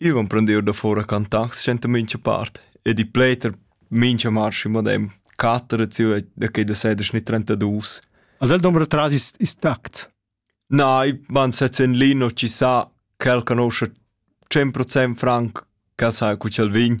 Io emprendev davor a cantar senta mincha part ed i pleta mincha marsch ün madem quatter zieva da que da seder sni trentaduos. Ad el dombra tras is, is tact? Na, i van sez in lin o ci sa ch'el canoscia 100% franc ch'el sa cu ch'el vegn,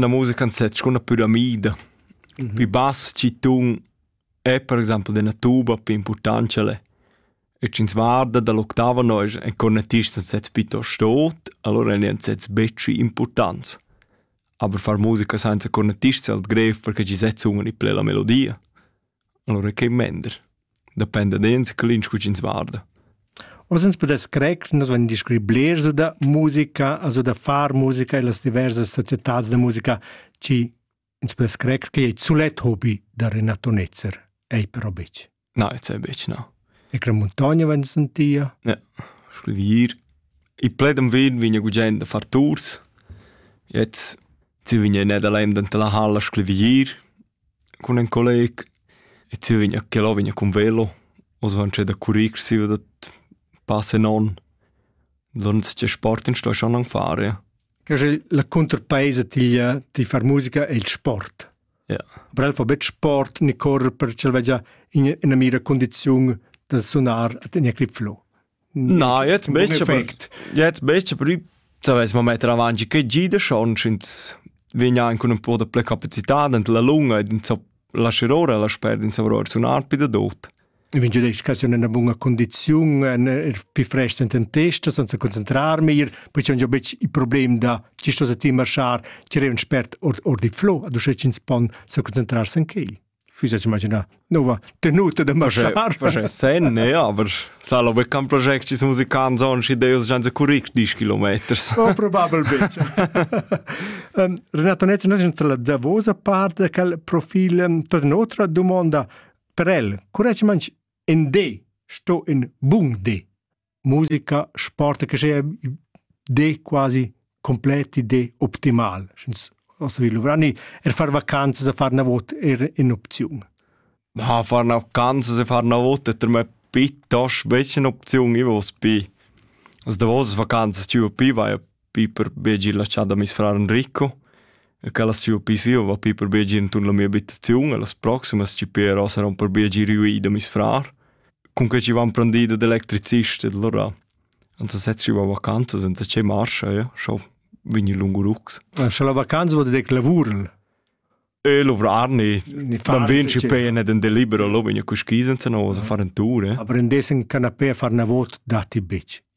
Na musica nsezza cun la püramida. Pi bass chi tun è per exaimpel d'ena tuba pi impurtant ch'el è. E sch'ins varda da l'octava nosch èn cornetists nsezza pitost tot, alura èn nsezza betg impurtants. Aber far musica sainza cornetists è alt grev perche chi sezza unan i ple la melodia. Alura che mender. Dependa da ins clinch co ch'ins varda. Oz ins pudess crer che nus vain descrit blers da musica, also da far musica e las diversas societads da musica chi ins pudess crer che ei sulet hobi da Renato Netzer. Ei però betg. No, jetzt ei betg, no. E che montagna vain sentia? Ja, schlivir. I pledem vin vigna gugent da far tours. Jetzt si vigna in Nederland anta la halla schlivir. Cun ün colleg e Zürich a quel ò vegniu cun velo. Oz han tschè da currir siva da pass e non. Donns tgei sport ins sto schon anc far, ja. La cunterpeisa tiglia ti far musica è il sport. Ja. Aber el fa betg sport ni correr per ch'el vegia ina mira cundiziun da sunar ad ina grip flow. Na, jetzt möchte jetzt möchte prima savess mo metter avanti che gida schon schins vegna anche un po' de ple capacità dent la lunga e dent la scirora la sper in savror sunar pi da dot. In vegn educazione in buona condizione, en pi frest in testa senza concentrarmi, poi c'è bec il problema da ci sto settimar schar, c'è un spert or, or di flo, ad uscecins pon sa concentrarsi in quel. füsses imaginar nova tenuta da marschar sen ne aber salo be kan project is musicant zon si deus janze curric 10 kilometers oh, probabilmente um, Renato Netz nos la davosa parte cal profil um, per nostra domanda per el currec manch in de sto in bung de musica, sport che sia de quasi completi de optimal. Sch'ins ossa vi luvrar ni er far vacanzas e far na vot er in opziun. Ja, far na vacanzas e far na vot è per me piuttosto becca un'opzione, ich was bei. Also, da was vacanzas, tu bei, war ja Piper Begi laschà da meis frar Enrico e ch'el as sia pii sieu va Piper Begi intuorn la mia abitaziun e las proximas chi però saron per Begi riuì da meis frar. Cunquai chi van prendì dad electricist ed allura ans sezs giò a vacanza senza che marcha, ja, scho vegni lungurux. Scha la vacanza vot dec lavurl? E luvrar ni man vin ci pene den delibero lo vegna cu ski senza no sa far en tour eh. aprendesen canapé far na vot datti bitch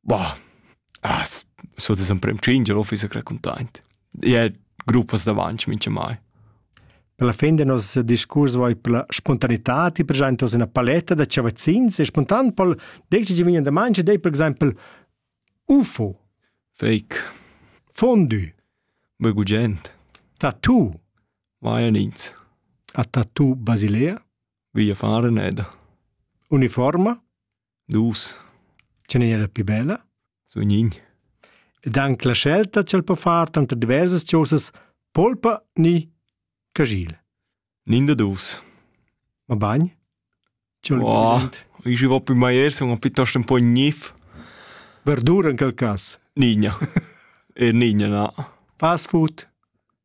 Boah, ah, so das emprem tschingier ho fiss raccontaint. Ja, gruppas davant mincha mai. Per la fin del nostro discurs vai per la spontaneità, ti per esempio ina paletta da chavazzins e spontan pol decidi di vignan da mangia dei per esempio UFO. Fake. Fondue. Begugent. Tattoo. Vai ins. A tattoo Basilea. Via fare neda. Uniforma. Dus. Ce n'è era più bella? Sun nin. Ed anche la scelta ch'el po far tanter diversas chosas polpa ni cagil. Nin da dus. Ma bagn? C'è oh, ich war bei Meier so piuttosto un po' gnif. Verdura in quel cas? Nigna. er nigna, na. Fast food?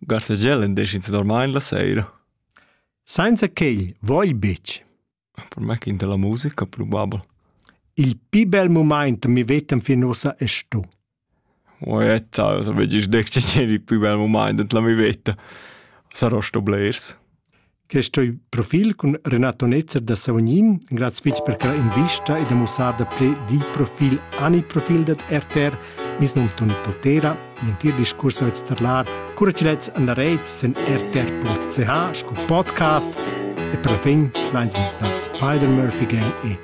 Gartegel indesch ins normalmein la seira. Sainza quegl vogl betg. Per me che inter la musica probabel. Il pi bel mumaint mi vetem fin ussa è sto. O è zau, so vegis dec ceceni il pi bel mumaint ent la mi veta. Sarò sto blers. Questo profil cun Renato Netzer da Savognin, grazie fitch per quella invista e da mussada ple di profil ani profil dat RTR, mis num Toni Potera, l'entir discurso vet starlar, cura ci lets andareit sen rtr.ch sco podcast e per la fin, klein sind das Spider-Murphy Gang e